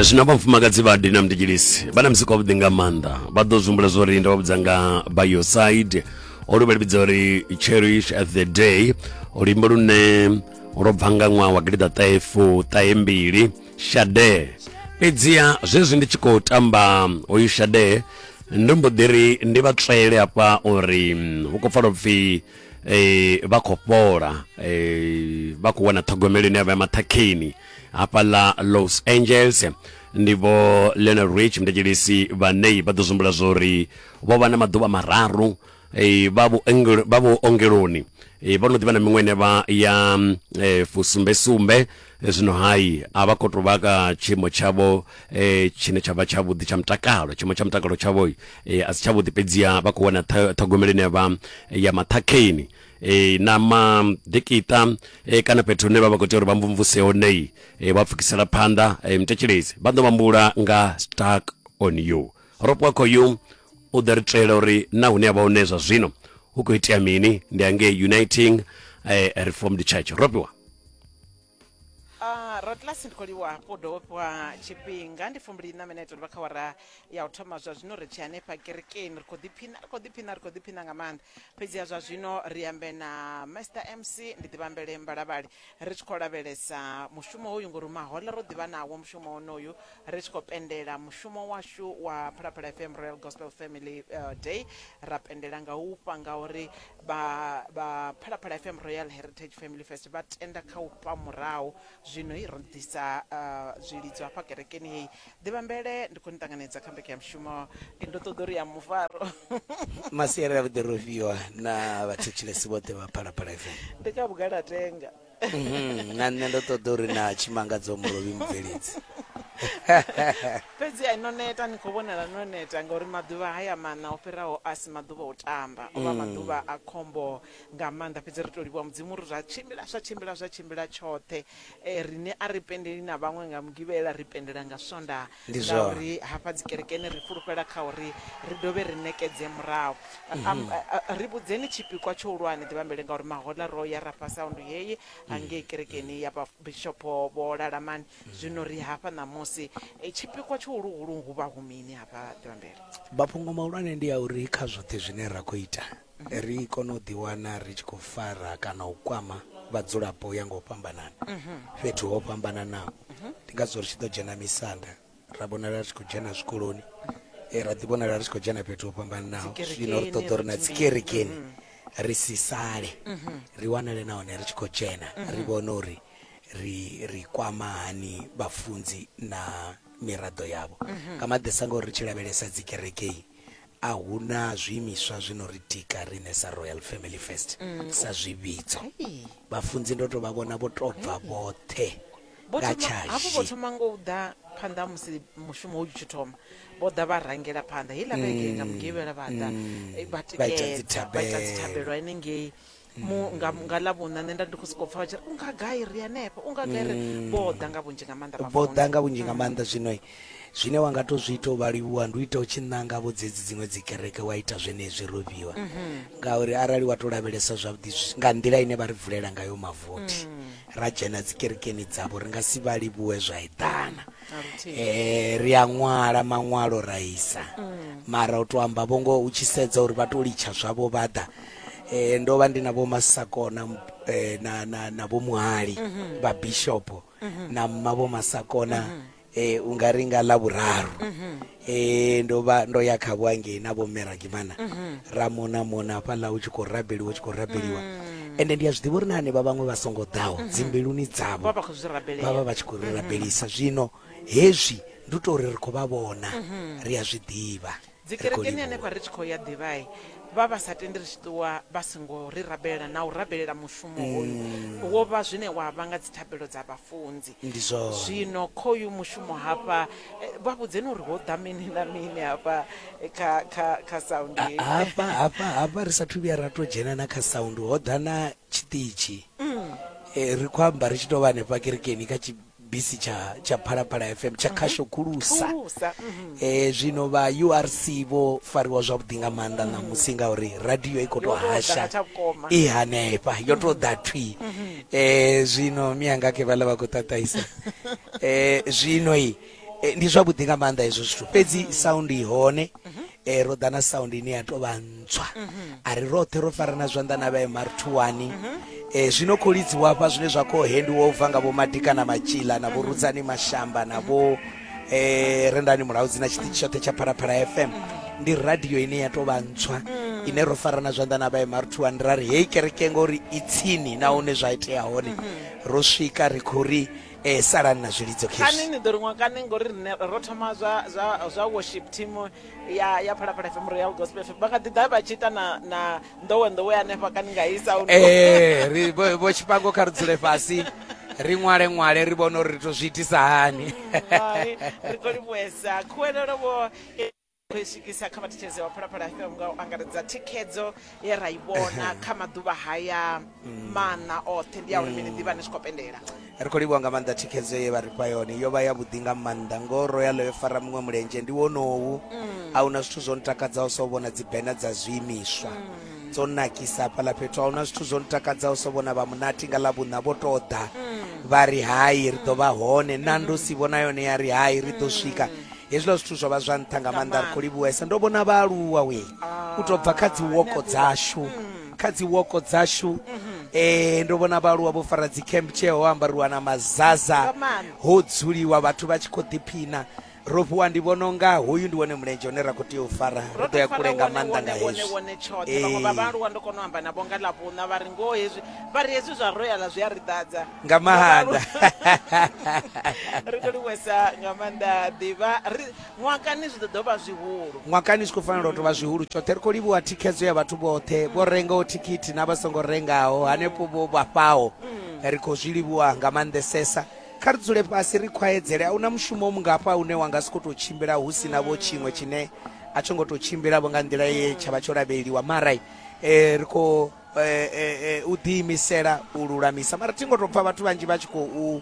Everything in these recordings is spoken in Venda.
zwino vha mfumakadzi vha dina mdijilisi vha na muzika wavhuḓi nga maanḓa vha ḓo zwihumbula zwo ri nda vha vhudza nga by your side olu vha livhidza uri cherish at the day luimbo lune lwo bva nga ṅwaha wa gilida ṱahefu ṱahe mbili shade fhedziha zwezwi ndi tshi khou tamba hoyu shade ndo mbo ḓi ri ndi vha tswele hafha uri hu khou pfala upfhi eh vha khou fhola eh vha khou wana ṱhogomelo ine ya vha ya maṱhakheni hafhaḽa los angeles ndi vho leonard rich mndetshelisi vhanei vha ḓo zwimbula zwo ri vho vha na maḓuvha mararu eh, vha vhuongelo- vha vhuongeloni eh, vho no ḓivha na miṅwe ine vha ya mm, eh, fusumbesumbe zwino hai a vha khou tou vha ka tshiimo tshavho um tshine tsha vha tshavhuḓi tsha mutakalo tshiimo tsha mutakalo tshavho um a si tshavhuḓi fhedziha vha khou wana ṱhogomelo ine ya vha ya maṱhakheni e, na maḓikiṱa e, kana fhethu hune vha vha khou tea uri vha mvumvuse honei e, vha pfukisela phanḓa e, mutetshelezi vha ḓo vhambula nga stuck on you Ropwakho yu u ḓo ri tswela uri na hune a vha hone zwa zwino hu khou itea mini ndi angei uniting eh, reformed church ropiwa Uh, rotlasi ndi khou livhuwa hafhu dovhofhiwa tshifhinga ndi fumbili na minete ri vha kha wara ya u thoma zwa zwino ri tshi hanefha kerekeni ri khou ḓiphina ri khou ḓiphina ri khou ḓiphina nga maanḓa fhedziha zwa zwino ri ambe na master mc ndi ḓivhambele mbalavhali Ri tshi khou lavhelesa mushumo hoyu ngori mahoḽa ro ḓivha nawo mushumo wonoyu ri tshi khou pendela mushumo washu wa Phalaphala FM Royal Gospel Family uh, Day ra pendela nga u fha ngauri vha vha Phalaphala FM Royal Heritage Family Fest vha tenda kha u fha murahu zwino ro ḓisa uh, zwilidzo hafha kerekeni heyi Ḓivhambele, Ndi khou ni ṱanganedza kha mbekanyamushumo. Ndo ṱoḓa uri ya mufaro. Masiari a Vhuḓirofhiwa na vhathetshelesi vhoṱhe vha Phalaphala FM. Ndi kha vhugala a tenga. Mhm, na nṋe ndo ṱoḓa uri na tshimangadza mulovhi mubveledzi. Fhedzi a no neta ni khou vhonala no neta ngauri maḓuvha haya maṋa o fhiraho a si maḓuvha o tamba. O vha mm. maḓuvha a khombo nga maanḓa fhedzi ri tou livhuwa Mudzimu uri zwa tshimbila zwa tshimbila zwa tshimbila tshoṱhe Riṋe a ri pendeli na vhaṅwe nga Mugivhela, ri pendela nga Swondaha Ndi zwone. ngauri hafha dzikerekeni ri fhulufhela kha uri ri dovhe ri ṋekedze murahu. Am- Ri vhudzeni tshipikwa tshihulwane, ḓivhambele ngauri mahoḽa ro ya ra phasa aundu heyi ha ngei kerekeni ya vha Bishopho Vho Lalamani, zwino ri hafha ṋamusi. Eh, Tshipikwa tshihuluhulu hu vha hu mini hafha ḓivhambele? Mafhungo mahulwane ndi a uri kha zwoṱhe zwine ra khou ita ri kone u ḓiwana ri tshi khou fara kana u kwama vhadzulapo u ya nga u fhambanana fhethu ho fhambananaho ndi ngazwo ri tshi ḓo dzhena misanda ra vhonala ri tshi khou dzhena zwikoloni eh, ra ḓi vhonala ri tshi khou dzhena fhethu ho fhambananaho zwino ri ṱoḓa uri na dzikerekeni ri si sale ri wanale nahone ri tshi khou dzhena ri vhone uri ri ri kwama hani vhafunzi na miraḓo yavho nga maḓesa ngauri ri tshi lavhelesa dzikerekei A hu na zwiimiswa zwi no ri tika riṋe sa Royal Family First sa zwivhidzo. Vhafunzi ndo tou vha vhona vho tou bva vhoṱhe Vho nga thoma- hafhu vho tshashi. thoma ngo u ḓa phanḓa ha musi mushumo u tshi thoma vho ḓa vha rangela phanḓa heiḽa vhege nga mugivhela vha ḓa eh, vha Mm. Vha ita tikedza vha ita dzithabelo. dzithabelo henengei mu nga, nga ḽa vhuna nṋe nda ndi khou sokou pfa vha tshi ri u nga gai ri hanefha u nga gai ri vho ḓa nga vhunzhi nga maanḓa vho vhafunzi. ḓa nga vhunzhi nga maanḓa zwino zwine wa nga to zwi ita u vha livhuwa ndi u ita u tshi ṋanga vho dzedzi dziṅwe dzi kereke wa ita zwenezwi ro fhiwa ngauri arali wa to lavhelesa zwavhuḓi zwi- nga nḓila ine vha ri vulela ngayo mavothi ra dzhena dzi kerekeni dzavho ri nga si vha livhuwe zwa eḓana Na luthihi. eh ri a ṅwala maṅwalo ra isa mara u to amba vho ngoho u tshi sedza uri vha to litsha zwavho vha ḓa eh ndo vha ndi na vho masakona eh, na na na vho muhali mhm. vha bishop mhm. na mma vho masakona mhm. eh unga ri nga la vhuraru eh ndo vha ndo ya kha vhuangeni na vho meragimana ra mona mona fha la u tshi khou rabeliwa u tshi khou rabeliwa mm. ende ndi a zwiḓivha uri na hanevha vhaṅwe vha songo ḓaho dzimbiluni dzavho vha vha vha tshi khou ri rabelisa zwino hezwi ndi u tou ri ri khou vha vhona ri a zwi ḓivha Dzi kerekeni hanefha ri tshi khou ya ḓivhai vha vha sa tendi ri tshi ṱuwa vha songo ri rabelela na u rabelela mushumo hoyu wo vha zwine wa vha nga dzi thabelo dza vha funzi zwino khoyu mushumo hafha vha vhudzeni uri ho ḓa mini na mini hafha kha kha kha sound hafha hafha hafha ri sa thu vhuya ra to dzhena na kha sound ho ḓa na tshiṱitshi ri khou amba ri tshi to vha hanefha kerekeni kha bisi tsha tsha phalaphala fm tsha khasho khulusa Khulusa, mhm. eh zwino vha urc vho fariwa zwavhuḓi nga maanḓa ṋamusi ngauri radio i khou tou Yo tou ḓa hasha nga tsha vhukoma. i hanefha yo tou ḓa thwi eh zwino miyanga ke vhala vha khou ṱaṱahisa eh zwino i eh, ndi zwavhuḓi nga maanḓa hezwo zwithu fhedzi sound i hone e ro ḓa na sound ine ya tou vha ntswa a ri roṱhe ro farana zwanḓa na vha mr thuwani e zwino khou lidziwa hafha zwine zwa khou hendiwa u bva nga vhomadika na matshila na vhorudzani mashamba na vho um rendani mulaudzi na tshiṱitshi tshoṱhe tsha phalaphala fm ndi radio ine ya tou vha ntswa ine ro farana zwanḓa na vha mr thuwani ra ri heyi kereke ngori i tsini nahone zwa itea hone ro swika ri khou ri eh salani na zwilidzo kani khezwi ni ḓo ri ṅwa kani ngori rine ro thoma zwa zwa zwa worship team ya ya phalaphala fm royal gospel fm vha kha ḓi ḓa vha tshi ita na na nḓowe nḓowe hanefha kani nga i sound eh ri vho vho tshipango kha ri dzule fhasi ri ṅwale ṅwale ri vhone uri ri to zwi itisa hani Hai, ri khou livhuwesa khuwelelo vho khou i swikisa kha vhathetshelezi vha phalaphala fm nga u angaredza thikhedzo ye ra i vhona kha maḓuvha haya maṋa oṱhe ndi ya uri mini ḓivha ni tshi khou pendela ri khou livhuwa nga maanḓa thikhedzo ye vha ri fha yone yo vha ya vhuḓi nga maanḓa ngo royal yo fara muṅwe mulenzhe ndi wonowu a huna zwithu zwo ntakadzaho so vhona dzibena dza zwiimiswa dzo nakisa hafhaḽa fhethu a huna zwithu zwo ntakadzaho so vhona vha munati nga ḽa vhuṋa vho tou ḓa vha ri hai ri ḓo vha hone nandosi vhona yone ya ri hai ri ḓo swika Hezwiḽa zwithu zwo vha zwa nṱha nga maanḓa, ri khou livhuwesa. Ndo vhona vhaaluwa we u tou bva kha dziwoko dzashu, kha dziwoko dzashu eh, ndo vhona vhaaluwa vho fara dzicamp tshee ho ambariwa na mazaza, ho dzuliwa vhathu vha tshi khou ḓiphina. Ro fhiwa ndi vhona unga hoyu ndi wone mulenzhe une ra khou tea u fara, ri ḓo ya kule nga maanḓa nga hezwi. Ee. vhone tshoṱhe vhaṅwe vha vhaaluwa ndo kona u amba navho nga ḽavhuṋa vha ri ngoho hezwi vha ri hezwi zwa royal zwi a ri ḓadza nga maanḓa ri to livhuwesa nga maanḓa ḓivha ri- ṅwakani zwi ḓo ḓo vha zwihulu ṅwakani zwi khou fanela u tou vha zwihulu tshoṱhe ri khou livhuwa thikhedzo ya vhathu vhoṱhe vho rengaho thikhithi na vha songo rengaho hanefho vho vhafhaho ri khou zwi livhuwa nga maanḓesesa kha ri dzule fhasi ri khwaedzele a huna mushumo mungafha une wa nga si khou tou tshimbila hu si na vho tshiṅwe tshine a tsho ngo tou tshimbila vho nga nḓila ye tsha vha tsho lavheleliwa mara eh, ri khou eh, eh, eh, u ḓiimisela u lulamisa mara thi ngo tou pfa vhathu vhanzhi vha tshi khou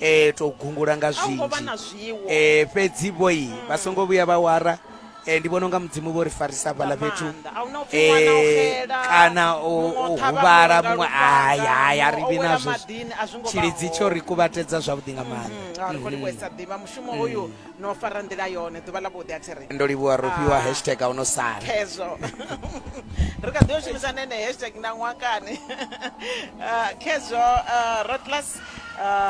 eh, tou gungula nga a u ngo vha zwinzhi na zwiwo eh, fhedzi vhoi vha songo vhuya vha wara eh, ndi vhona unga mudzimu vho ri farisa nga hafhaḽa fhethu maanḓa a huna upfi ṅwana o eh, xela kana u muṅwe o u ṱhavha huvhala muṅwe muṅwe nga lufhanga, haya haya muṅwe ri o vhi wela nazwo maḓini, a zwi ngo vha tshilidzi tsho hone. ri kuvhatedza zwavhuḓi nga maanḓa Mm, a ri kho livhuwa i sa ḓivha mushumo uyu no fara nḓila yone ḓuvha ḽa vhuḓi a thi ri ndo livhuwa ro fhiwa ah. hashtag a u no sala khezwo ri kha ḓi yo shumisa nene hashtag na ṅwakani ah, khezwo ah, rotlas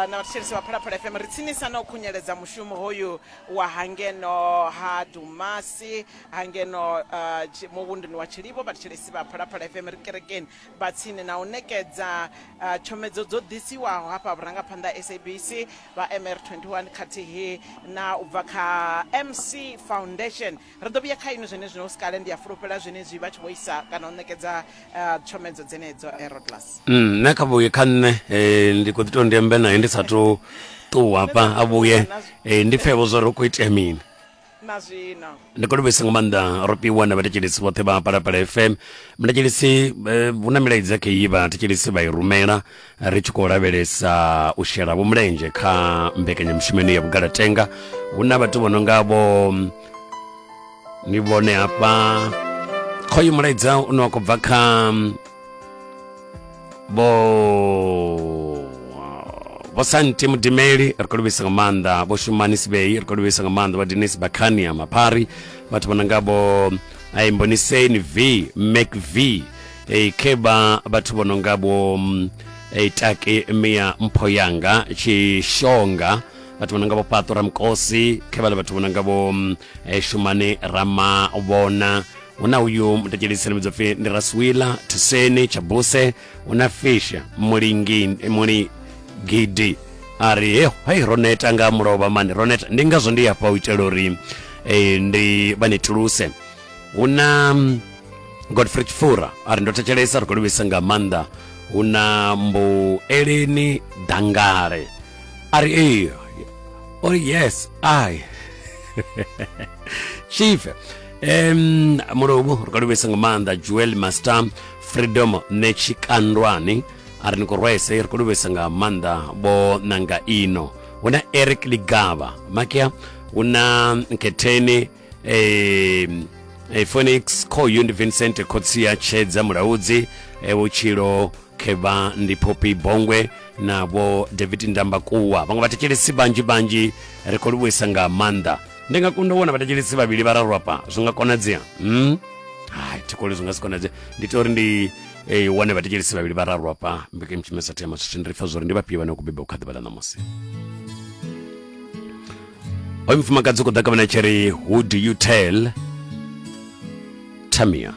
na vhathetshelesi vha phalaphala fm ri tsinisa na u khunyeledza mushumo hoyu wa hangeno ha dumasi hangeno muvhunduni wa tshilivo vhathetshelesi vha phalaphala fm ri kerekeni vha tsini na u ṋekedza tshomedzo dzo ḓisiwaho hafha vhurangaphanḓa SABC vha MR21 khathihi na u bva kha MC Foundation ri ḓo vhuya kha inwi zwenezwino hu si kale ndi a fulufhela zwenezwi vha tshi vho isa kana u ṋekedza tshomedzo dzenedzo Erodlas mm, nṋe kha vhuye kha nṋe eh, ndi khou ḓi tou ndi ambe naye ndi sa tou ṱuwa hafha a vhuye eh, ndi pfevho zwo ri khou itea mini na zwino ndi khou livhuisa nga maanḓa ropiwa na vhathetshelesi vhoṱhe vha palapala fm vhathetshelesi eh, hu na milaedza kha iyi vhathetshelesi vha i rumela ri tshi khou lavhelesa u shela vho mulenzhe kha mbekanyamushumo ino ya vhugalatenga hu na vhathu vho no nga vho ni vhone hafha khoyu mulaedza une wa khou bva kha vho vho santi mudimeli ri khou livhisa nga maanḓa vho shumani sibei ri khou livhisa nga maanḓa vha denis bakhania maphari vhathu vha nanga vho aimboniseni v mac v e kheba vhathu vho no nga vho mm, e take mia mpho yanga tshishonga vhathu vho no nga vho paṱo ramukosi khevhale vhathu vho no nga vho mm, e shumane ramavhona hu na uyu mutetshelisi no pfi ndi raswila thuseni tshabuse hu na fisha mulingini gidi a ri he hai ro neta nga mulovha mani ro neta ndi ngazwo ndi hafha u itela uri eh, ndi vha netuluse hu na mm, godfrey chifura a ri ndo thetshelesa ri khou livhisa nga maanḓa hu na mbueleni dangale a ri ee o ri yes ai chief em mulungu ri khou livhisa nga maanḓa joel master freedom netshikandwani a ri ni khou rwese ri khou livhisa nga maanḓa vho nanga ino hu na eric ligava makia hu na nketheni em, eh, phoenix khoyu ndi vincent khotsia tshedza mulaudzi eh, vhutshilo khevha ndi phopi bongwe na vho david ndambakuwa vhaṅwe vhathetshelesi vhanzhi vhanzhi ri khou livhuisa nga maanḓa ndi nga kunda u wana vhathetshelesi vhavhili vhararu afha zwi nga konadzea mm? hai thikoli zwi nga si konadzea ndi tea uri ndi eh, wane vhathetshelesi vhavhili vhararu afha mbekanye mushumo sa thema zwithu ndi pfa zwori ndi vhafhio vhane vha khou beba u kha ḓuvha ḽa ṋamusi hoyu mufumakadzi u khou ḓa kavhana tsheri who do you tell tamia